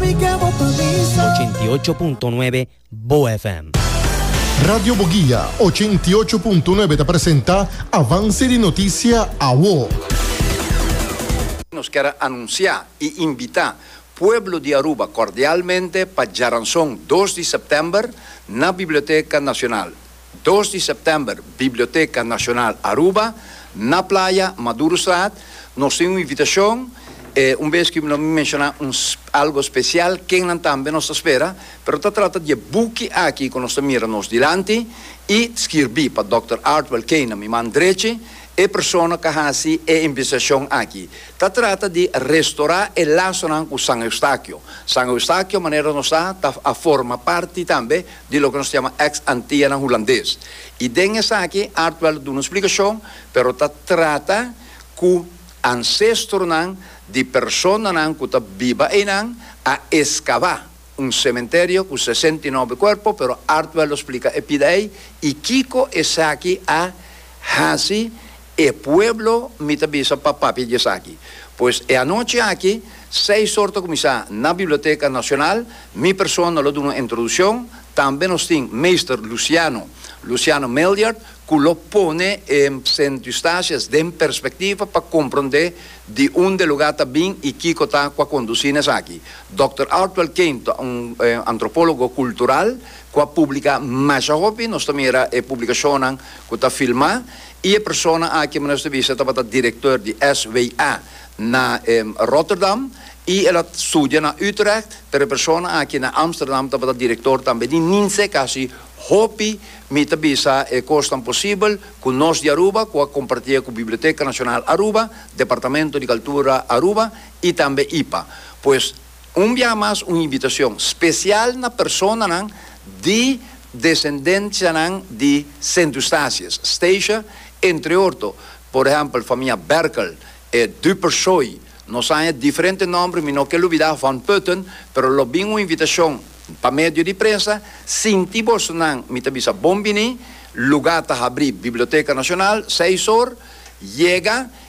Ochenta i ocho punto nuebe Bo FM. Radio Boguia ochenta i ocho punto nuebe ta presenta Avance di Noticia Awo. Nos ker a anuncia y invita pueblo di Aruba cordialmente pa djaranzon dos di september na Biblioteca Nacional. Dos di September, Biblioteca Nacional Aruba, na Playa, Madurostraat, nos tin un invitacion, e un bes ki lo mi menciona un algo special, kennan tambe nos ta spera, pero ta trata di e buki aki cu nos ta mira nos dilanti y skirbi pa Dòkter Artwell Kane, mi man drechi, e persona cu a haci e investigacion aki. Ta trata di restora e lasonan cu San Eustachio. San Eustachio, manera nos ta, ta a forma parti tambe di loke nos ta yama ex Antillanan Hulandes. I den esaki Artwell ta duna un splikashon, pero ta trata ku ansestronan di personanan ku ta biba einan a eskabá un sementerio ku sesenta i nobe kuerpo, pero Artwell lo splika e pida ei i kiko esaki a hasi. E pueblo mi ta bisa pa papia di esaki. Pues e anochi aki, seis or ta kuminsá na Biblioteka Nashonal, mi persona lo duna un introdushon, tambe nos tin Meester Luciano, Luciano Miljard, ku lo pone e Sint Eustatius den perspektiva pa komprondé di unda e lugá ta bin i kiko ta ku a kondusí na esaki. Dòkter Artwell Kane ta un antropólogo kultural ku a publiká masha hopi, nos ta mira e publikashonnan ku ta filmá I e persona aki mester ta bisa tabata director di SWA na Rotterdam i el a studia na Utrecht, pero e persona aki na Amsterdam tabata director tambe di Ninse casi hopi mi ta bisa e cosnan posibel cu nos di Aruba cu a compartia cu Biblioteca Nacional Aruba, Departamento di Cultura Aruba i tambe ipa. Pues. Un bia mas un invitacion special na personanan di descendencianan di Sint Eustatius, Statia, entre orto, por ehempel famia Berkel, e Dupersoy, nos haña diferente nomber, mi no ke lubida Van Putten, pero lo bin un invitacion pa medio di prensa, sinti bosonan, mi ta bisa bon bini, luga ta habri Biblioteca Nacional seis or, yega